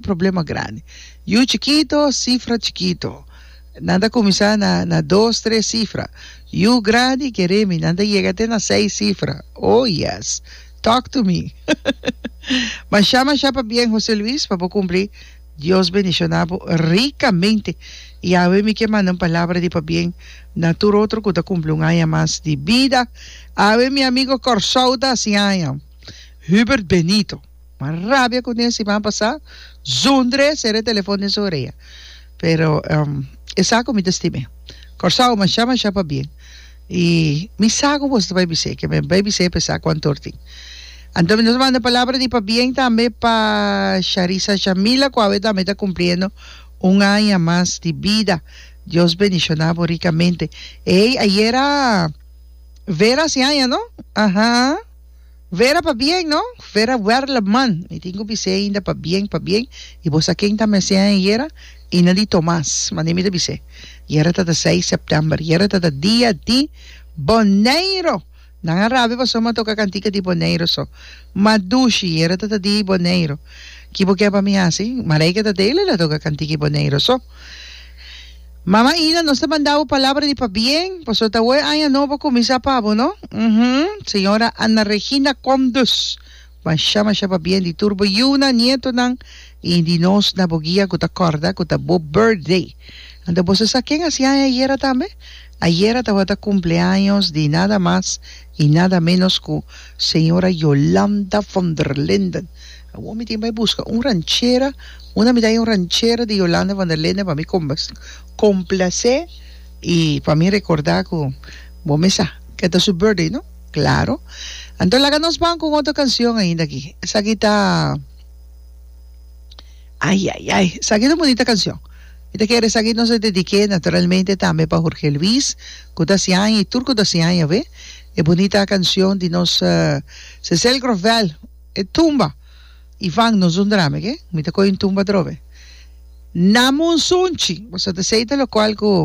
Problema grandi. Yu chikito, sifra chikito. Nan ta kuminsá na na dos, tres sifra. Yu grandi, keremi, nan ta yega te na seis sifra. Oh, yes! Talk to me! Mashá, mashá pabien, José Luis, pa bo kumpli. Dios bendishoná bo rikamente. I awe mi ke manda un palabra di pabien na tur otro ku ta kumpli un aña mas di bida. Awe mi amigo Kòrsou ta hasi aña, Hubert Benito. Ma rabia cu den siman pasá Zundre sera e telefon den su orea. Pero e sa cu mi ta stim'é. Kòrsou mashá mashá pa bien. I mi sa cu boso ta bai bis'é, ke mi a bai bis'é p'e sa cu antor tin. Anto mi nos a manda palabra di pabien tambe pa Sharisa Shamila cu awe tambe ta cumpliendo un aña mas di bida. Dios bendishoná bo ricamente. Ey, ayera Vera haci aña, no? Aha. Vera pa bien no? Vera Werleman Mi tin cu bisé ainda pa bien pa bien y bo sa ken ta mece a ayera? Y na di Tomas mande mi ta bisé yera tata seis september yera tata dia di Boneiro nan a rabi pasobra mi a toca cantica di Boneiro so ma dushi yera tata di Boneiro ki bo ke pa mi haci Marijke ta dele la toca cantica di Boneiro so. Mama Ina nos ta manda bo palabra di pabien, pasobra ta hoy aña nobo a cuminsa pa bo, no? Uhum. Señora Ana Regina Comdus, masha masha pabien di tur bo yiunan, nietonan y di nos na bo guia cu ta corda cu ta bo birthday. Anto boso sa ken a haci aña ayera tambe? Ayera tabata cumpleaños di nada mas I nada ménos ku señora Yolanda von der Linden. Awor mi tin bai buska un ranchera, una mi dai un ranchera di Yolanda von der Linden pa mi komplasé i pa mi rekordá ku bo mesa ke ta su birthday, no? Klaro. Anto laga nos ban ku un otro kansion ainda aki. Esaki ta. Ai ai ai esaki ta bonita cancion mi ta kere esaki nos a dedique naturalmente tambe pa Jorge Luis cu ta haci aña y tur cu ta haci aña awe e bonita cancion di nos Cecel Grovel e tumba Ivan nos un drama oke mi ta coge un tumba atrobe Namonsunchi boso ta sey ta locual cu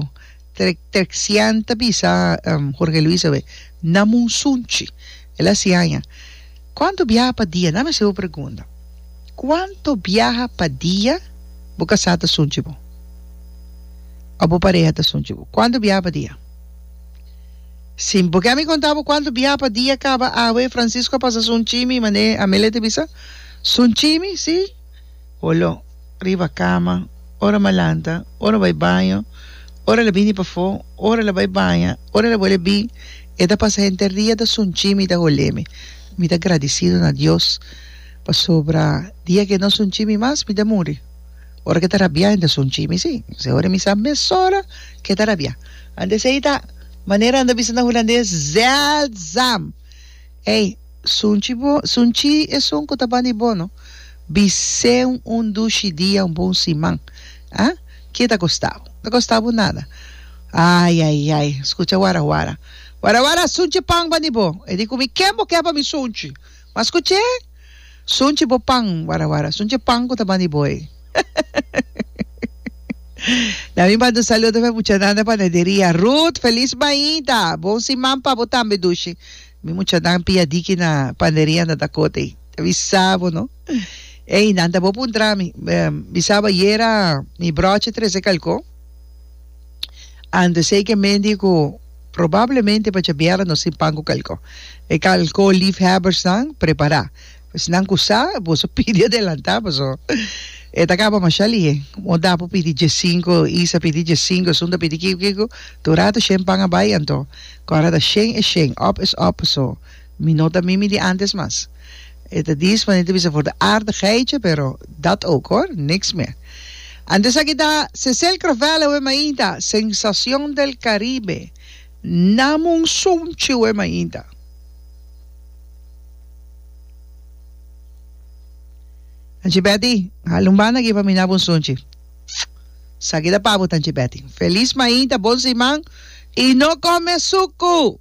Terxian ta bisa Jorge Luis awe, Na munsunchi. El a siña aña, Kuantu biaha pa dia? Dame hasi bo pregunta. Kuantu biaha pa dia bo kasá ta sunchi bo? Òf bo pareha ta sunchi bo? Kuantu biaha pa dia? Si bo ke ami konta bo kuantu biaha pa dia kaba awe, Francisco a pasa sunchi mi, manera Amelia ta bisa, sunchi mi, si. Olo riba kama, ora m'a lanta, ora bai baño, ora la bini pafó, ora la bai baña, ora la bole bin, e ta pasa henter dia ta sunchi mi, ta hol'é mi. Mi ta gradisidu na Dios pasobra dia k'e no sunchi mi mas mi ta muri. Ora k'e ta rabiá henter sunchi mi, sí, p'esei ora mi sa mesora k'e ta rabiá. Anto esei ta manera nan ta bisa na hulandes, zeldzaam. Ey, sunchi bo, sunchi esun cu ta ban di bono, bicen un dushi dia, un bon siman, ah? Kie ta costa bo? Ta costa bo nada. Ay, ay, ay, scucha wara wara. Wara wara, sunchi pan ban di bo. E di cu mi, Ken bo ke pa mi sunchi? Mas cu che? Sunchi bo pan, wara wara. Sunchi e pan cu ta ban di bo ey. Na mi manda un saludo pa e muchanan den panaderia. Ruth, feliz bainda! Bon siman pa bo tambe, Dushi. Mi muchanan pia diki na panaderia nan ta cota ey. Ta bisa bo, no? Ey, nan ta bo puntra mi. Bisaba yera mi brochi trece calco. Antes eke mendi ku probablemente pa chabiara nos tin pan ku kalko. E kalko liefhebbersnan prepará. Esnan ku sa, boso pidi adelantá paso e ta kaba masha lihe. Moda por pidi dje sinku, Isa pidi dje sinku, esun ta pidi kiku kiku. Tur rato shen pan a bai, anto ku a rata shen e shen, òp es òp paso. Mi no ta mimi di antes mas. E ta dis manera ta bisa for di aardigheidje, pero dat ook hoor, niks meer. Antes aki ta Cecile Crovel e Wemainta, Sensación del Caribe, Nam un sunchi Wemainta. Tanchi Betty, hala un banda aki pa mi nap un sunchi. Saki ta pa bo Tanchi Betty. Feliz Mainta, bon siman y no come suku!